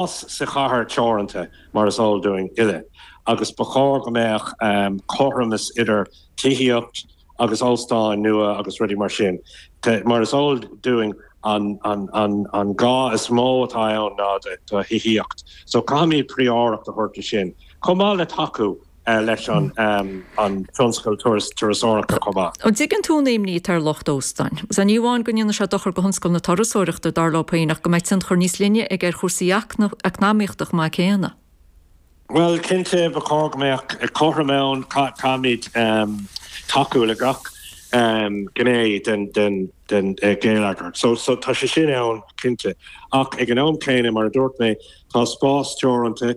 fás sa chathair teoranta, mar is eol dúinn uile, agus ba chóir go mbeadh cothromas idir tithíocht agus óstáin nua agus rudaí mar sin. Mar is eol dúinn, an gá is mó atá ann ná do thithíocht, so caithfimid prióireacht a thabhairt do sin, chomh maith le tacú, leis an tionscal turasóireachta chomh maith. An dtuigeann tú an imní atá ar lucht óstáin? Sea, ní amháin go ndéanann sé seo dochar go thionscal na turasóireachta, dar leo féin, ach go mbeidh tionchar níos leithne aige ar chúrsaí eacnamaíochta chomh maith céanna. Bhuel, cinnte, ba chóir go mbeadh cothrom ann. Caithfimid tacú le gach gné den gheilleagar so tá sé sin ann, cinnte. Ach ag an am céanna, mar a dúirt mé, tá spás teoranta.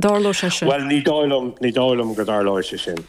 dtarlóidh sé sin. Bhuel, ní dóigh liom, ní dóigh liom go dtarlóidh sé sin.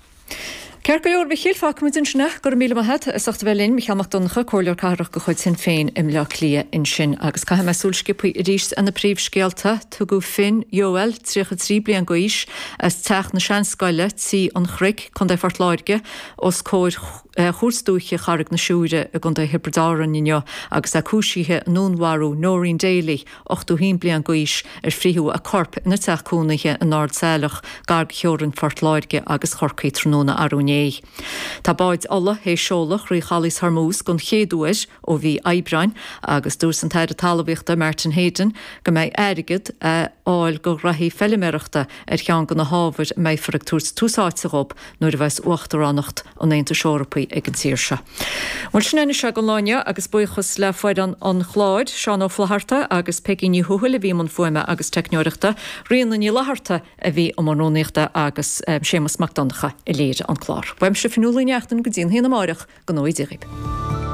Ceart go leor, a Mhichíl, fágfaimid ansin é. Go raibh míle maith a't as ucht a bheith linn, Micheál Mac Donncha, Comhairleoir Cathrach de chuid Shinn Féin i mBleá Cliath ansin. Agus caithfidh muid súil sciobtha aríst ar na príomhscéalta. Tugadh Finn Yowell, 33 bliain d'aois, as Teach na Seanscoile, Tí an Chnoic, Co Phort Láirge, os comhair Chúirt Dúiche Charraig na Siúire i gContae Thiobraid Árann inniu agus é cúisithe i ndúnmharú Noreen Daly, 81 bliain d'aois, ar fritheadh a corp ina teach cónaithe in Ard Saileach, gar go theorainn Phort Láirge agus Chorcaí tráthnóna arú inné. Tá báid ola théis seoladh thrí Chaolas Hormuz den chéad uair ó mhí Aibreáin agus dúirt an tAire Talmhaíochta Martin Heydon go mbeidh airgead a fháil do ghnaithí feiliméarachta ar cheann de na hábhair a mbeifear ag tabhairt tús áite dhóibh nuair a bheas Uachtaránacht an Aontais Eorpaigh ag an tír seo. Bhuel, sin é anois againn an lá inniu agus buíochas le foireann an chláir, Seán Ó Flaithearta agus Peigí Ní Thuathail a bhí i mbun fuaime agus teicneoireachta, Ríona Ní Fhlatharta a bhí i mbun rúnaíochta agus Séamus Mac Donncha a léirigh an clár. Uaimse, Fionnuala Ní Neachtain, go dtí an t-am céanna amárach, go n-éirí libh.